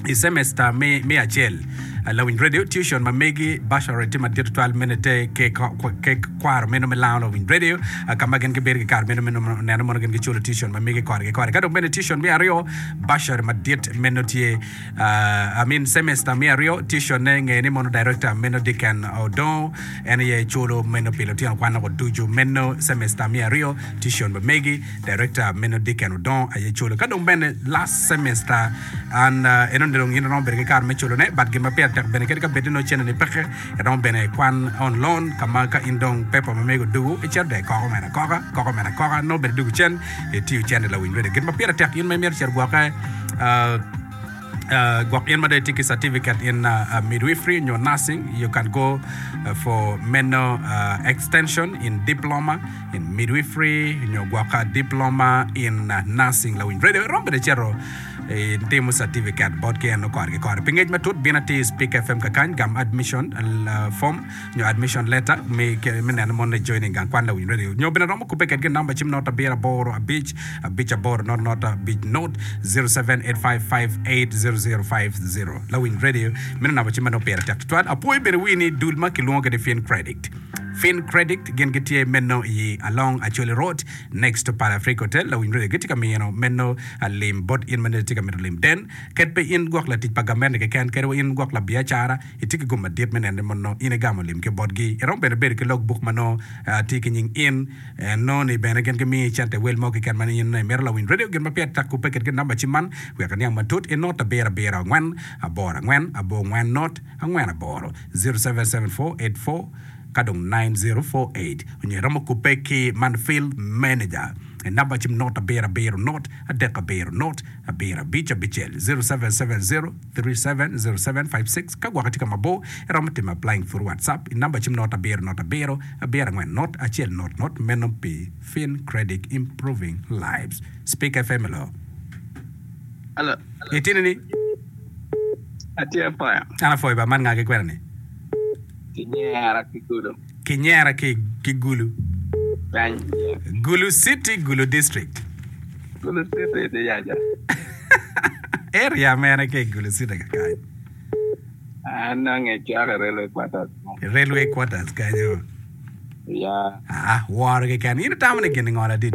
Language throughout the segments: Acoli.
I cemesta me acel, lawiny radio tuition ma megi bachelorate tye madit tutwal me nete ke kwaro meno me lango lawiny radio ka ma gin gibedo ki kare meno me neno mono gin giculo tuition ma megi kore ki kore. Ka dong bene tuition me aryo, bachelorate madit meno tye I mean cemesta me aryo tuitionne ngeye ni mono director meno Dicken Odongo en aye culo meno pi lutino kwan-nogo ducu meno cemesta me aryo tuition ma megi Director meno Dicken odongo aye colo ka dong bene last semester and uh, eno dong in romo bedo ki kar me colo ne but gin ma pire tek bene kadi ka bed ni no cene ni peke romo bene kwan on loan ka ma ka in dong paper ma mego dugu icito dong ikoko mena koka koko mena koka no bene dugu cen itiyo cene lawiny rede gin ma pire tek in ma imito cito gwoke uh, gwok in ma dong itye ki certificate in midwifery nyo nursing you can go for meno extension in diploma in midwifery nyo gwok diploma in nursing lawiny bene irom bene icito itimo certificate bot ki en nongo kore ki kore pi ngec matut bino atir i speak fm kakany gam admission form nyo admission letter me neno mon ni joining gang kwan lawiny radio nyo bene romo kubbe kedgi number cim not abiro aboro abic abic aboro not not abic not 0785580050 lawiny radio meno number cim ma nongo pire tek tutwal apwoyo bene wii ni dul ma kilwongo kede fin credit fin credit gin gitye meno i along acholi road next to para africa hotel lawiny radio gitye ka mino meno lim bot in ma nene itye ka mito lim den ket pe in gwok latic pa gamente keken kede wa in gwok labiacara Itye ki gum madit me neno ni mono in igamo lim ki botgi. Iromo bene bedo ki log buk ma nongo tye ki nying in. Nongo ni bene gin gimiyi cente i wel mo keken ma in nongo imito. Lawiny redio gin ma peya tek kubbe kitgi namba cim man wek iniang matut i not abiro abiro angwen aboro angwen abor ngwen not angwen aboro, zero seven seven four eight four ka dong nine zero four eight, onyo iromo kubbe ki man field manager i namba cim not abiro abiro not adek abiro not abiro abic abicel, zero seven seven zero. 370756 Ka gwoki tye ka mabor, iromo timo applying through WhatsApp i number cim not abiro not abiro abiro angwen not acel not not meno pi FinCredit Improving Lives Speak FM Hello Hello Itini ni? Atye apaya. An apwoyo ba man nga ki kwena ni? Kinyera ki kodo. Kinyera ki ki Gulu. Kany. Gulu city, Gulu district. Gulu city ni yaja. Area mene ki Gulu city ka kany? An nange caka railway quarters. Railway quarters kanyo. Ya. Ah, woro keken. In itamo ni gin ngol adit?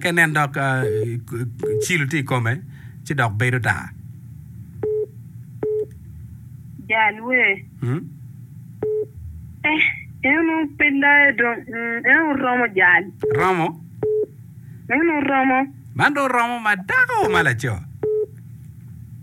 Ka inen dok cilo tye i kome, ci dok bedo tar. Jal wer. Eh, en pe layo dong, mm, en oromo jal. Romo? En oromo. Man dong romo ma dako ma laco?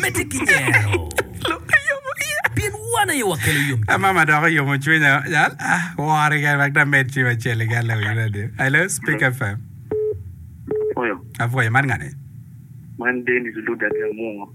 Medde ki nyero. Pien wan aye wakelo yomcwiny. Ama ma dok oyomo cwinya jal ah wori kene wek da med cim acel i gal lewi radio. Hello Speak FM. Apwoyo. Apwoyo man ngani? Man Dennis Luda Gamungo.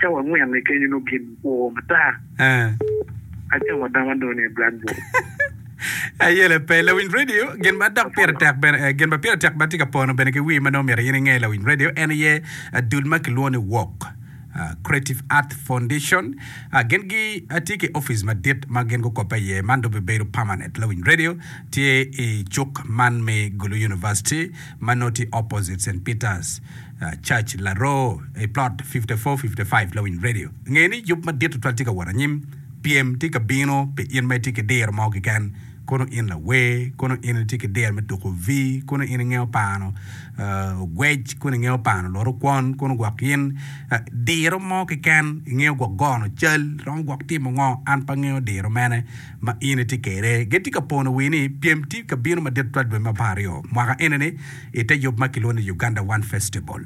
Cawa angwen i kenyo nongo gin oo matar. Acamo adama nongo ni blackboard. Aye lape. Lawiny radio, gin ma dok pire tek bene, eh, gin ma pire tek ma tye ka pono bene ki wii ma nongo myero in inge lawiny radio en aye ah, dul ma kilwongo ni WARC, ah, Creative Art Foundation. Ah, gin gi ah, tye ki office madit ma gin gukobbe iye. Man dong bibedo permanent. Lawiny radio tye i cuk man me Gulu University ma nongo tye opposite St. Peter's. Church Laroo, i Plot 5455 Lawiny Radio. Nge ni yub madit tutwal tye ka wot anyim. Pyem tye ka bino pi in ma itye ki diro mo keken, kono in lawer, kono in itye ki diro me tuko vi, kono in ingeyo pano ogwec, kono ingeyo pano loro kwon, kono gwok in diro mo keken, ingeyo gwok gono cal, iromo gwok timo ngo, an pe angeyo diro mene ma in itye kwede. Gitye ka pono wi ni pyem tye ka bino madit tutwal dwe me apar aryo mwaka eni-ni. i te yub ma kilwongo ni Uganda One Festival.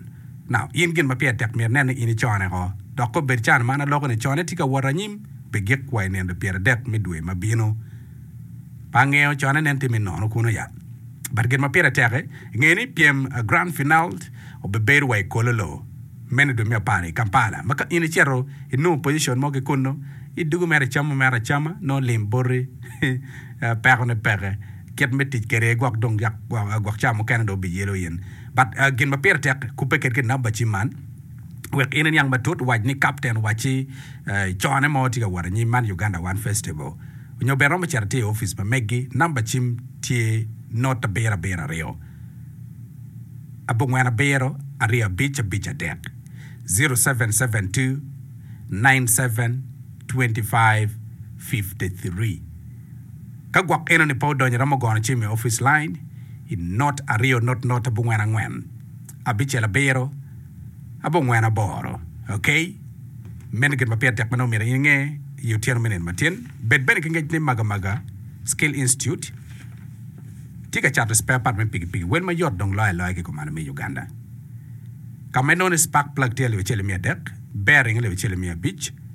Now, in gin ma pire tek myero inene in icone ko, dok kop bed can man aloko ni cone tye ka wot anyim pi gik wa i nino pyeradek me dwe ma bino. Pe angeyo cone nen tye me nono kunu ya. But gin ma pire tek-ki, ingeyo ni pyem Grand Finaled obibedo wa i Kololo, meno i dwe me apar i Kampala, ma ka in icito inongo position mo ki kunu, idugu mere icamo mere acama, nongo lim boti, peko ne peke. kit me tic kede gwok dong gwok ca mukene dong bi yelo in but gin ma pire tek kupe kit ki number cim man wek in iniang matut wac ni captain wacci cone mo tye ka wot anyim man Uganda one festival nyo bene romo cito tye i office pa megi number cim tye note abiro abiro aryo abongwen abiro aryo abic abic adek zero seven seven two nine seven twenty five fifty three Ka gwok enoni pe odonyo iromo gono cim i opic lain i not aryo not not abongwen angwen abicel abiro abongwen aboro ok meno gin ma pire tek ma nongo myero in inge i otyeno me nino matin bed bene ki ngec ni maga maga skill institute tye ka cato spare part me piki piki wel ma yot dong loyo aloya ki kumalo me Uganda ka ma inongo ni spark plug tye alip acel ki miya adek bearing alip acel ki miya abic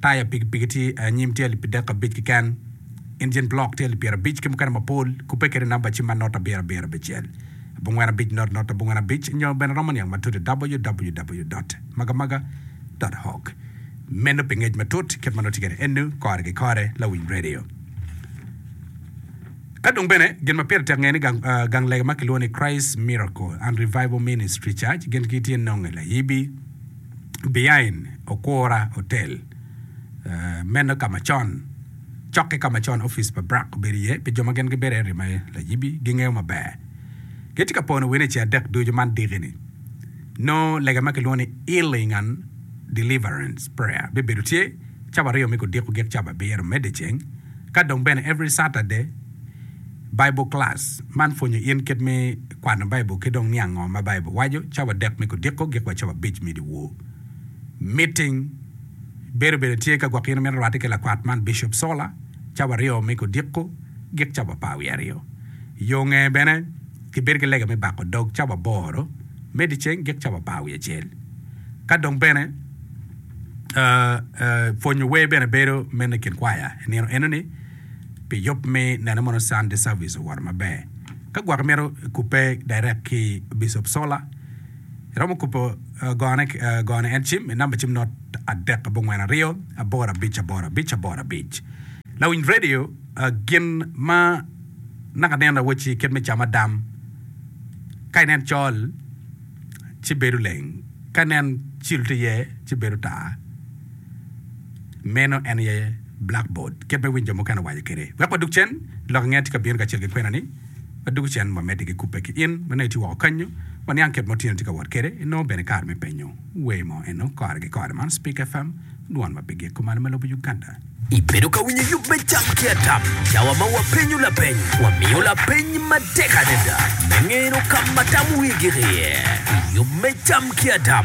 Taya pikipiki tye i anyim tye alip dek abic keken, injin block tye alip pyera abic ki mukene mapol, kubbe kede namba cim ma not abiro abiro abicel, abongwen abic not not abongwen abic nyo bene romo niang matut i www. Magamaga. Org. Meno pi ngec matut kit ma noti kede enu kore ki kore. Lawiny Radio. Ka dong bene gin ma pire tek ngeye ni gang, gang lega ma kilwongo ni Christ Miracle and Revival Ministry Church gin ki tye nonge layibi. behind okura hotel meno ka macon cok ki ka macon office pa Brack obedo iye pi jo ma gin gibedo area ma Layibi gingeyo maber. Gitye ka pono wene ceng adek ducu man diki ni nongo lega ma kilwongo ni healing and deliverance prayer bibedo tye cabo aryo me kodiko gik cabo abiro mede ceng ka dong bene every Saturday Bible Class, Man pwonyo in kit me kwano Baibul ki dong niang ngo ma Baibul waco. Cawa adek me kodiko gik wa cawa abic me dyewor. Meeting, Bedo bene tye ka gwok in imito rwatte ki lakwat man Bishop Sola cawa aryo me kodiko gik cawa apar wiye aryo. Yo nge bene ki bedo ki lega me bako dog cawa aboro me dyeceng gik cawa apar wiye acel. Ka dong bene pwonyo wer bene bedo meno ikin kwaya inino enoni. pi yub me neno mono Sunday service owoto maber. Ka gwok imito kubbe direct ki Bishop Sola, iromo kubo gone gone en cim i number cim not adek abongwen aryo aboro abic aboro abic aboro abic. Lawiny radio gin ma naka neno awoci kit me cama dam ka inen col ci bedo leng ka inen cilo tye iye ci bedo tar. Meno en aye blackboard. Kit me winyo jo mukene owaco kede, wek wadug cen, lok inge tye ka bino kacel ki kwena ni wadug cen wamedde ki kubbe ki in ma nongo itye woko kanyu, waniang kit ma otyeno tye ka wot kede, inongo bene kare me penyo wer mo eno kore ki kore. Man Speak FM, dwon ma pe giko malo ma lobo Uganda. Ibedo ka winyo yub me cam ki atam cawa ma wapenyo lapeny? Wamiyo lapeny matek adada me ngeno ka ma tam wigi giye i yub me cam ki atam.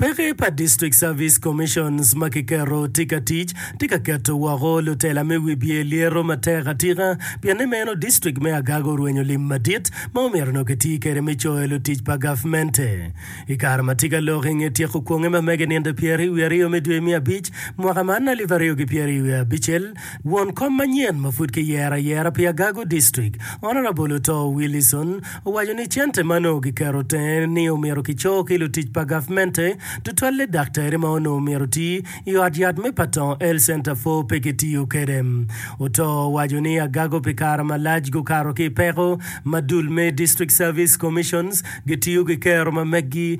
Peke pa District Service Commissions ma kiketo tye ka tic tye ka keto woko lutela me wibye lyeto matek atika pienni meno District me Agago orwenyo lim madit ma omyero nongo kitii kwede me coyo lutic pa gavmente i kare ma tye ka lok i nge tyeko kwonge ma mege nino pyeraryo wiye aryo me dwe me abic mwaka man alip aryo ki pyeraryo wiye abicel. Won kom manyen ma pud kiyero ayera pi Agago District, Honourable Otoo Willison, owaco ni cente ma onongo kiketo tenge ni omyero kicor ki lutic pa gavmente tutwalle daktari ma onongo myero oti i ot yat me Patongo Health Centre pwo pe kitiyo kwede. Otoo owaco ni Agago pi kare malac gukato ki i peko ma dul me District Service Commissions gitiyo ki kero ma meggi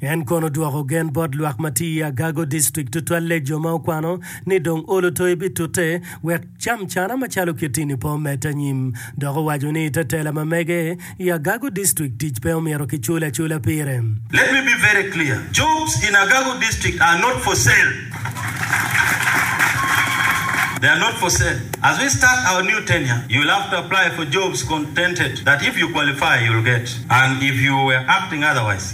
En kono dwoko gen bot lwak ma tye i Agago District tutwalle jo ma okwano ni dong olo toyi bitute wek cam cana macalo kit-ti-ni pe omedde anyim dok owaco ni ite tela ma mege i Agago District tic pe omyero kicul acula pire. Let me be very clear, jobs in Agago District are not for sale, they are not for sale, as we start our new tenure you will have to apply for jobs contented that if you qualify you will get and if you were acting otherwise,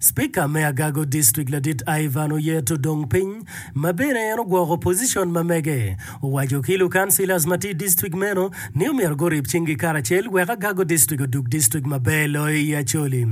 Spika me Agago District Ladit Ivan Oyet odong piny ma bene en ogwoko opozicon ma mege. Owaco ki lukancilas ma tye i district meno ni omyero gurib cinggi karacel wek Agago District odug district maber loyo i Acholi.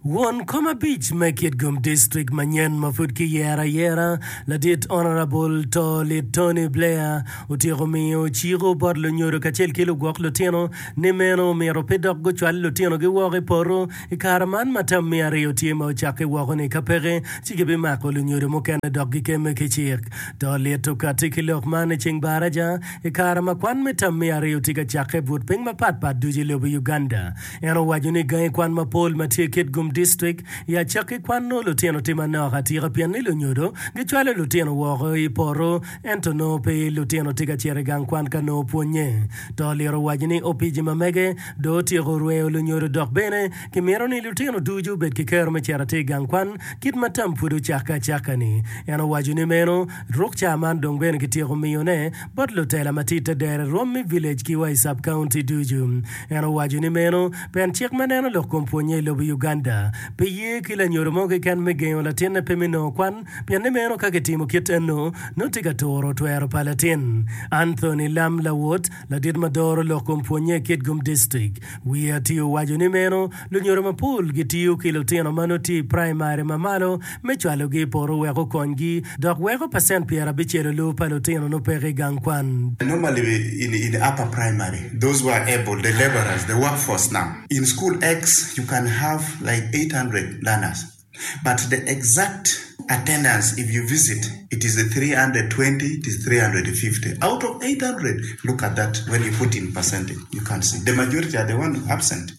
Won kom abic me Kitgum District manyen ma pud kiyero ayera, Ladit Honourable Too Lit Tony Blair otyeko miyo ciko bot lunyodo kacel ki lugwok lutino, ni meno omyero pe dok gucwal lutinogi woko i poto i kare man ma tam me aryo tye ma ocakke woko-ni. Ka peke, ci gibimako lunyodo mukene dok gikemme ki cik. To lit okatti ki lok man i ceng Baraja, i kare ma kwan me tam me aryo tye ka cakke i but piny mapat pat ducu i lobo Uganda. En owaco ni gangi kwan mapol ma tye i Kitgum Distrik i acakki kwan nongo lutino tye manok atika pien ni lunyodo gicwalo lutino woko i poto Ento nongo pe lutino tye ka cito i gang kwan ka nongo pwonnye. To oliro owaco ni opici ma mege dong otyeko rweyo lunyodo dok bene kimito ni lutino ducu obed ki kero me cito atir i gang kwan kit ma tam pud ocakke acakka-ni. En owaco ni meno ruk ca man dong bene kityeko miyone bot lutela ma tye i te dere rwom me village ki wa i sub county ducu. En owaco ni meno pen cik ma neno lok kom pwonnye i lobo Uganda pe ye ki lanyodo mo keken me gengo latinne pe me nongo kwan Pi ni meno ka kitimo kit ennu, nongo tye ka turo twero pa latin. Anthony Lam Lawot, ladit ma doro lok kom pwonnye i Kitgum District, wiye atir owaco ni meno lunyodo mapol gitiyo ki lutino ma nongo tye i praimari ma malo me cwalogi i poto wek okonygi dok weko pacent pyera abicelolu pa lutino nongo peke i gang kwan. Normally in in upper primary those who are able the labourers the workforce now in school X you can have like 800 learners. but the exact attendance if you visit it is 320 it is 350 out of 800 look at that when you put in percentage you can't see the majority are the one absent.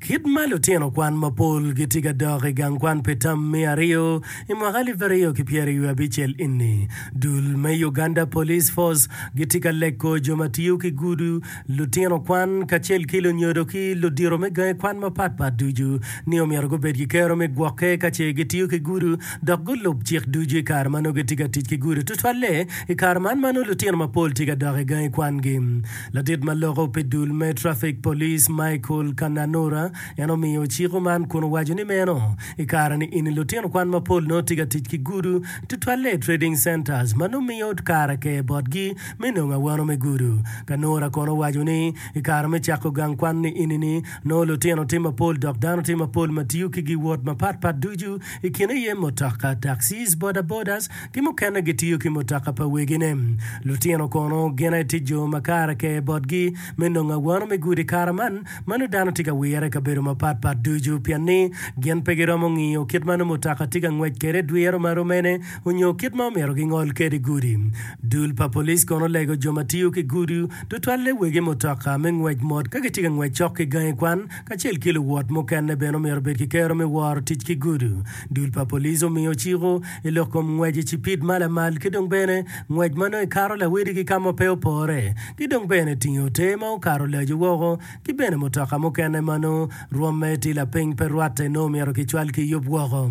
Kit ma lutino kwan mapol gitye ka dok i gang kwan pi tam me aryo i mwaka alip aryo ki pyeraryo wiye abicel eni, dul me Uganda Police Force gitye ka leko jo ma tiyo ki gudu Lutino kwan kacel ki lunyodo ki ludito me gangi kwan mapat pat ducu ni omyero gubed ki kero me gwokke ka ce gitiyo ki gudo dok gulub cik ducu i kare ma nongo gitye ka tic ki gudo. Tutwalle i kare man ma nongo lutino mapol tye ka dok i gangi kwangi, ladit ma loko pi dul me trafik police Michael Kananura en omiyo ciko man kun owaco ni meno i kare ni eni lutino kwan mapol nongo tye ka tic ki gudo tutwalle i trading centers ma nongo miyo kare ker botgi me nongo awano me gudo. Kanura kono owaco ni, I kare me cako gang kwan ni enini, nongo lutino tye mapol dok dano tye mapol ma tiyo ki giwot mapat pat ducu, i kine aye mutoka, taxis, bodabodas, ki mukene gitiyo ki mutoka pa wegine. Lutino kono gin aye tye jo ma kare ker botgi me nongo awano me gudo i kare man. Mano dano tye ka wire i kabedo mapat pat ducu pien ni gin pe giromo ngiyo kit ma nongo mutoka tye ka ngwec kwede dwiro ma romene. onyo kit ma omyero gingol kede gudi. Dul pa police kono olego jo ma tiyo ki gudu, tutwalle wegi mutoka me ngwec mot ka gitye ka ngwec cok ki gangi kwan, kacel ki luwot mukene bene omyero obed ki kero me woro tic ki gudu. Dul pa police omiyo ciko i lok kom ngwec i cipid ma lamal ki dong bene ngwec ma nongo ikato lawedi ki ka ma pe opore, ki dong bene tingi ote ma okato laco woko, ki bene mutoka mukene ma nongo rwomme tye lapiny pe rwatte nongo myero kicwal ki yub woko.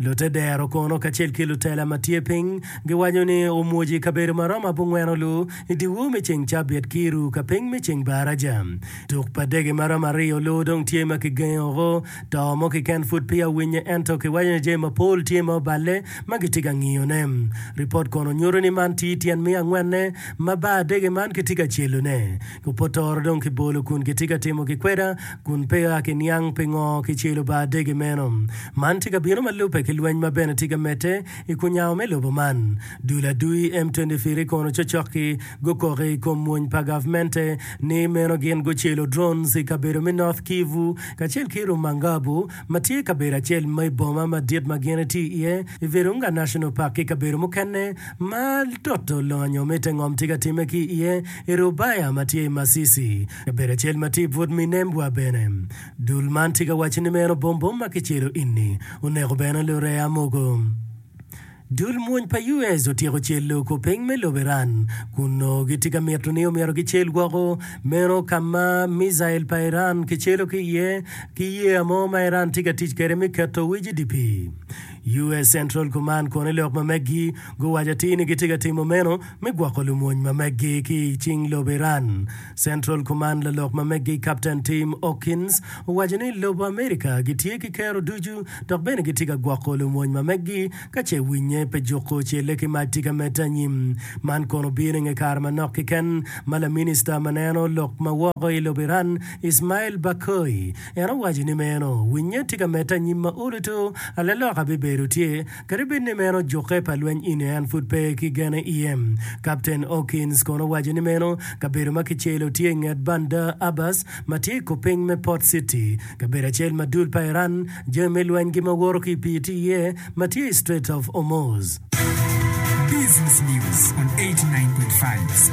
Lute dero kono kacel ki lutela ma tye piny giwaco ni omwoc i kabedo ma romo abongweno-lu i dyewor me ceng Cabit ki i ru ka piny me ceng Baraja. Tuk pa dege ma romo aryo-lu dong tye ma kigengo-gu. To mo kiken pud peya owinye ento kiwaco ni jami mapol tye ma oballe ma gitye ka ngiyone. Ripot kono nyuto ni man tye tyen me angwenne ma bar dege man kitye ka celone. Opotoro dong kibolo kun kitye ka timo gikweda kun peya kiniang pingo kicelo ba adege meno. Man tye ka bino ma lubbe ki lweny ma bene tye ka medde i kunyawo me lobo man. Dul adui M23 kono cocok-ki gukoko i kom mwony pa gavmente ni meno gin gucelo drones i kabedo me North Kivu kacel ki Rumangabo ma tye kabedo acel ma i boma madit ma gin itye iye i Virunga National Park ki kabedo mukene ma toto lonyo me te ngom tye ka timme ki iye i Rubaya ma tye i Masisi. Kabedo acel ma tye i but Minembwa bene, dul man tye ka wacce ni meno bom bom ma kicelo ini oneko bene lureya mogo. Dul mwony pa US otyeko celo kor piny me lobo Iran kun nongo gitye ka mito ni omyero gicel woko meno ka ma mijail pa Iran kicelo ki iye ki yeya mo ma Iran tye ka tic kwede me keto wic idye pii. US Central Command kono i lok ma megi guwaco atir ni gitye ka timo meno me gwoko lumony ma meggi ki i cing lobo Iran. Central Command lalok ma meggi Kapten Tim Hawkins owaco ni lobo Amerika gitye ki kero ducu dok bene gitye ka gwoko lumony ma meggi ka ce winye pe juko celle ki mac tika medde anyim. Man kono bino inge kare manok keken ma laminista ma neno lok ma woko i lobo Iran Ismail Baghoi en owaco ni meno winye tye ka medde anyim ma oluto alaloka bibedo tye Kadi bed ni meno jukke pa lweny eni en pud pe ki gene iye. Kapten Hawkins kono owaco ni meno kabedo ma kicelo tye inget Bandar Abbas ma tye ikopiny me Port City, kabedo acel ma dul pa Iran jami me lwenygi ma woto ki i pii tye iye ma tye i Strait of Hormuz. Business News on 89.5 Spectrum.